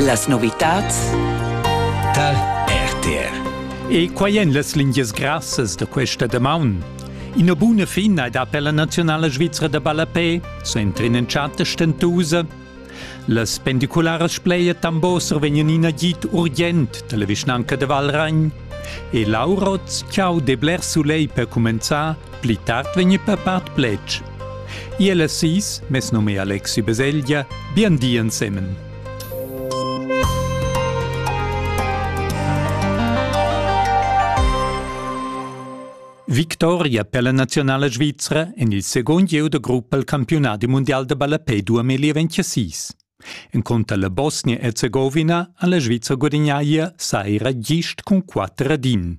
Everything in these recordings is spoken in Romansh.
Las novitads tar RTR. E quai èn las lingias grassas da questa damaun. Ina buna fina è da per la naziunala svizra da ballapè, s'entra in entschatta stentusa. Las pendicularas Spleia Tamboser vegnan in agid urgent dalla vischnanca de Valragn e Lauroz Ciao de Bler Soleil per cumenzar Pli tard vegni papart pletg. Iel e sis, mes num è Alexi Beselgia, bien di ensemen. Victoria per la nazionale svizzera en il second gieu de gruppa al campionati mondial de ballapé 2026. En conta la Bosnia-Herzegovina ha la Svizzera guadagnaia saira gist cun 4 din.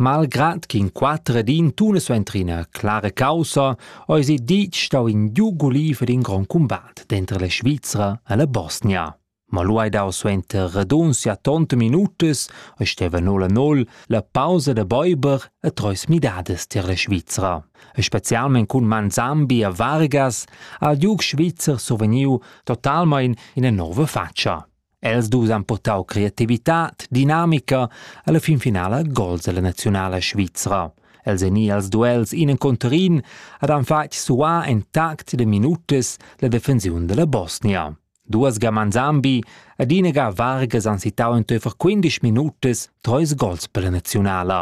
Malgrad ch'in quater ed in tuna suentrina clara caussa eisi ditg stau in giug guliv ed in grond cumbat denter la Svizra e la Bosnia. Ma lu hai dau suenter radunzia tonta minutas e steva nol a nol la pausa da beiber e treis midadas tier la Svizra. E specialmein cun Manzambi e Vargas ha il giug svizzer survegniu totalmein ina nova faccia. Els dus han purtau creativitad, dinamica alla fin finala gols alla nazionala svizra. Els ein i als duels in encunter in ed han fatg suar en tact de minutas la defensiun della Bosnia. Duas gaman Zambi ed ina ga Vargas han sittau enteifer 15 minutas treis gols per la nazionala.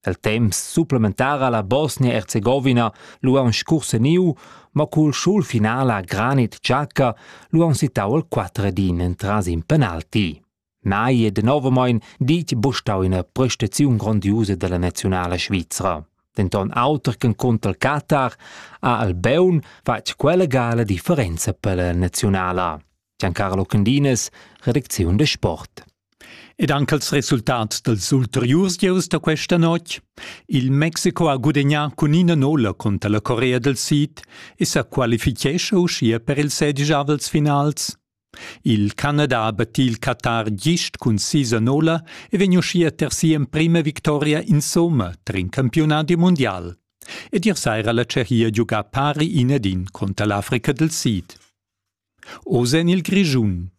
El temps supplementar ha la Bosnia-Erzegovina lu aunc scurseniu, mo cul schul final a Granit Xhaka lu aunc sittau il quatter ed in entras in penalti. Mai e denovamein ditg bustau ina prestaziun grondiusa dalla nazionala svizra. Denton auter che conter il Qatar ha Albeun fatg quella gala differenza per la nazionala. Giancarlo Cundines, redacziun de sport. Ed anche il resultat dels ulteriurs gieus da questa notte? Il Mexico ha gudagnà cun ina nolla contro la Corea del Sid e sa qualifichescha uschia per il sedigiavels finals. Il Canada ha battì il Qatar gist cun sisa nolla e vegn uschia ter sia emprima victoria in somma tar in campionat mondial. Ed ier saira la Tschechia giuga pari inedin contro l'Africa del Sid. Oz en il Grischun.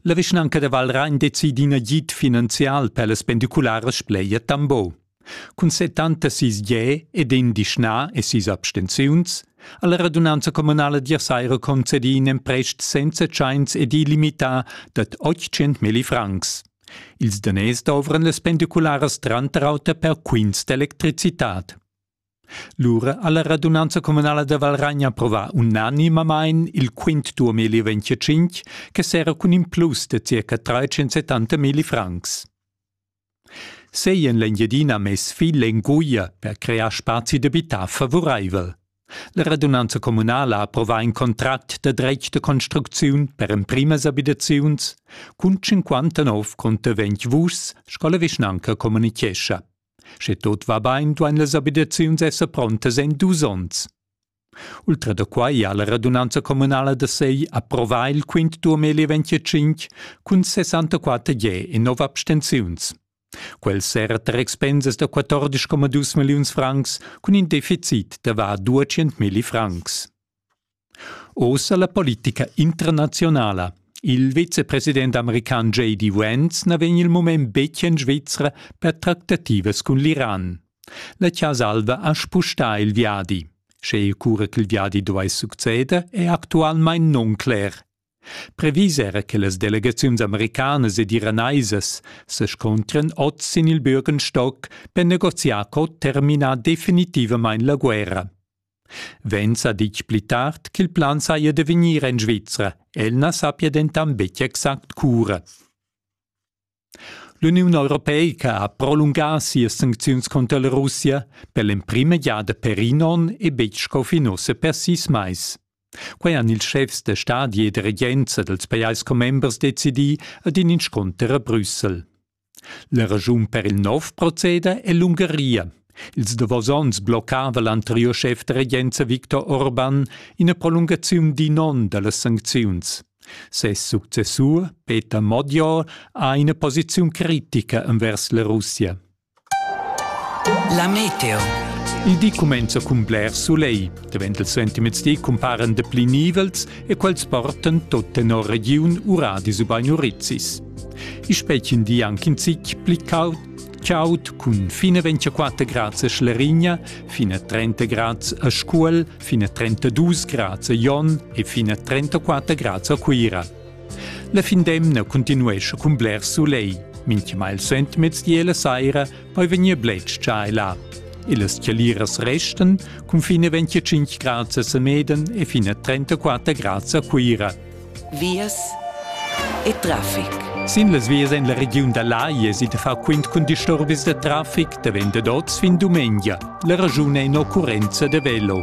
La vischnanca da Val Rain decidi in agid finanzial per las pendicularas Spleia Tambo. Cun settanta sis ge ed in dischna e sis abstenziuns ha la radunanza communala d'Irsaira concedì in emprest senza tschains ed illimità dad 800 millifrancs. Ils daners dovran las pendicularas tranter auter per quints d'electricitad. Lura ha la radunanza communala da Valragn approvà unanimamain il quint 2025 che serra cun implus da circa 370 milli francs. Sei en l'Engiadina mess fil enguia per crear spazi d'abitar favuraivel. La radunanza communala ha approvà in contract da dretg da construcziun per emprimas abitaziuns cun 59 conter 20 vuschs, sco la vischnanca communitgescha. Sche tot va bain, duain las abitaziuns esser prontas en dus onns. Ultra da quai ha la radunanza communala da Sei approvà il quint turmeli 25 cun 64 je e 9 abstenziuns. Quel serra tar expensas da 14,2 milliuns francs cun in deficit da var 200 milli francs. Ossa la politica internazionala. Il vicepresident american J.D. Vance na vegn il mument betg en Svizra per tractativas cun l'Iran. La Chasa Alva ha spustà il viadi. Sche cura ch'il viadi duai succeder è actualmain nuncler. Previs era che las delegaziuns americanas ed iranaisas se scontren oz sin il Bürgenstock per negoziar co terminar definitivamain la guerra. Venza ditg pli tard ch'il plan saja da vegnir en Svizra. El na sappia dentant betg exact cura. L'Uniun europeica ha prolungà sias sancziuns cunter la Russia per l'emprima giada per in onn e betg sco fin ussa per sis mais. Quai han ils schefs da stadi e da regenza dals pajais commembers decidì ad in inscunter a Brüssel. La raschun per il nov proceda è l'Ungaria. Ils davos onns bloccava l'anteriur schef da regenza Viktor Orban ina prolungaziun d'in onn da las sancziuns. Ses successur, Peter Modior, ha ina posiziun critica envers la Russia. La meteo. Il di cumenza cun bler soleil. Davent il suentermezdi cumparan dapli nivels e quels portan tot tenor regiun uradis ubain urizis. I spetgin di anche in zic pli caud caud cun fine 24 grads a Schlerigna, fine 30 grads a Scuol, fine 32 grads a Jon e fine 34 grads a Cuira. La fin d'emna continuesce cun bler soleil. Minchmal il sent mezdi e la saira Poi vegnir bletschà là. Illas chialiras restan cun fine 25 grads a Semeden e fine 34 grads a Cuira. Vias e traffic. Sin las vias en la regiun da Lai es i da far quint cun disturbis da traffic da vende d'oz fin dumengia. La ragiun è in occurrenza da velo.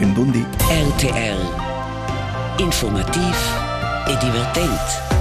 Ün bun di. RTL Informativ e divertent.